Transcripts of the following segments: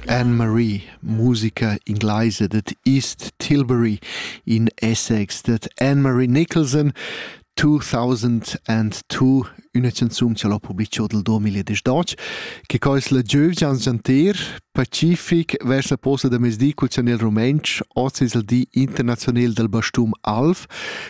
Anne-Marie, musica ingleisa dad East Tilbury, in Essex dad Anne-Marie Nicholson, 2002, üna canzun cha l'ho publicho dal 2018, che quais la giövgian gianter pacific vers la posta da mezdi cul chanel rumentsch, oz es il di internazionel dal bastum alv,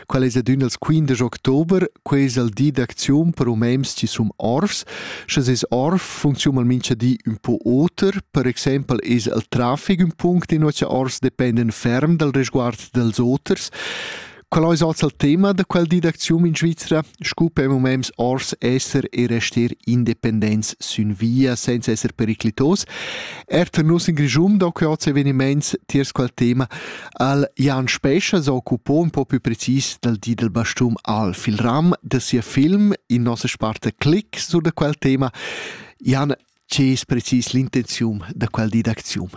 Quel es adün als quindesch october, quai es il di d'acziun per umens chi sun orfs. Sche es orf funcziun al mincha di ün po oter, per exaimpel es il trafic ün punct in cha orfs dependen ferm dal resguard dals oters. Qual ais hoz il tema da quel di d'acziun in Svizra? Scu per umens ors esser e rester independents sün via senza esser periclitos. Er tar nus in Grischun do que hoz evenimaints tiers quel tema. El Jan Spescha s'occupa un po più precis dal di del bastun al fil ram da sia film in nossa sparta Click su da quel tema. Jan, che es precis l'intenzium da quel di d'aczium?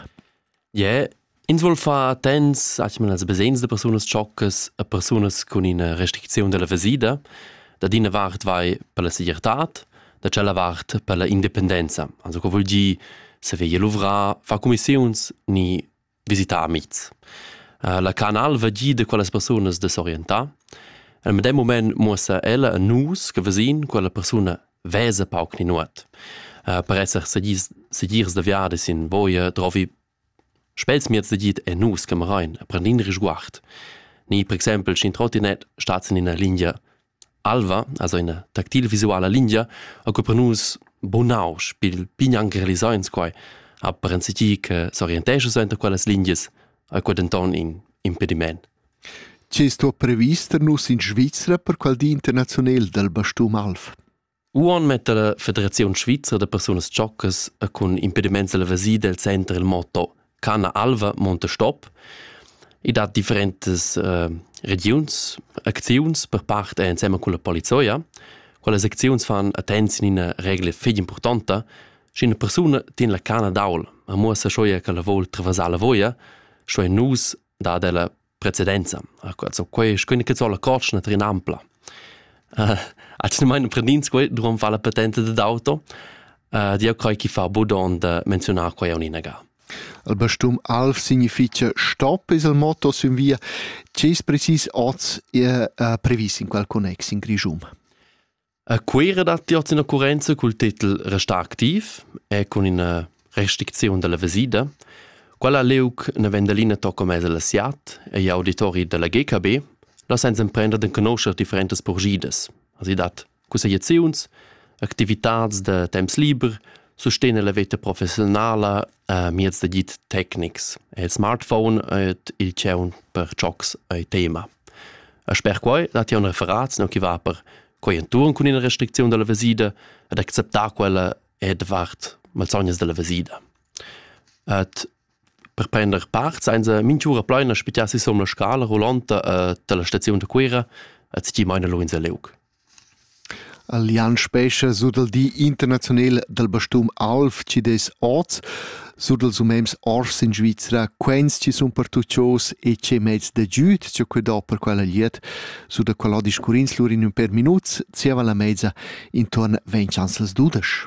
Yeah, ins vuol far attents a als besens de persunas tschoccas a persunas con ina restriczione della vesida, da d'ina vart vai per la segirtad, da c'ella vart per la indipendenza. Also co vuol dir se veglia luvrar, fa commissiuns ni visitar amics. Uh, la canal va gi da quellas persunas da s'orientar. En medem moment muossa ella a nus che vesin quella persuna vesa pauc ni nuot. Uh, per esser segirs da viade sin voia trovi spels miez da git e nus camerain a prendin risguard. Ni per exempel, sch'in trottinet stat sin ina linea Alva, also ina tactile visuala lingia, occupa nus bunausch pil pign anc realisau ins quai, ha per enzatgi che s'orientescha suenter quellas lingias, ha quei denton in impediment. Tge sto previs tar nus in Svizra per qual di internaziunal dal bastum alv? Uonn metta la Federaziun svizra da persunas tschoccas e cun impediments all'evasir del center il motto Canna alva, monte stop. I dat differentas uh, regiuns, acziuns per part ensemen con la polizia. Quelle acziuns fan attenzione in una regla figli importante. Sche una persona tiene la canna d'aul, e muossa scioi che la vuol travasar la voia, scioi nus da della precedenza so quei schöne che sola cotschna trin ampla uh, at ne meine prendins quei duran fa la patente de d'auto uh, dio coi chi fa budon de menzionar quei uninaga Il bestum Alf significa stop es il motto sün via. Ces precis oz è uh, previs in quel connex in Grigium? A Cuira datti oz ina occurrenza cul titel Restar activ e cun ina restricziun da la vesida. Quella liug na Vendelina tocca mez al Siat e gli auditori della GKB lassan emprender d'enconoscher differentas purgidas. Also dat cussegliaziuns, activitads da temps liber, sustegna la veta professionala uh, mieds d'agid tecnics. Il smartphone et il tscheun per giocs è tema. E sper quai dat un referat no chi va per quai enturn cun ina restricziun della vesida ed acceptar quella e davart malsognas della vesida. Et per prender part senza minchura pleina spitar si som la scala rollanta uh, della stazione da Cuira et si maina lo in Leuc. Allianz Spescha sut il di internaziunal dal bastun alv chi dess oz sut ils umems ors in Svizra quens chi sun pertuchos e che mezs da giüd cha que do per quella glieud sut da quella discurrins lur in ün per minuts zieva la mezza intuorn ventg ans las dudesch.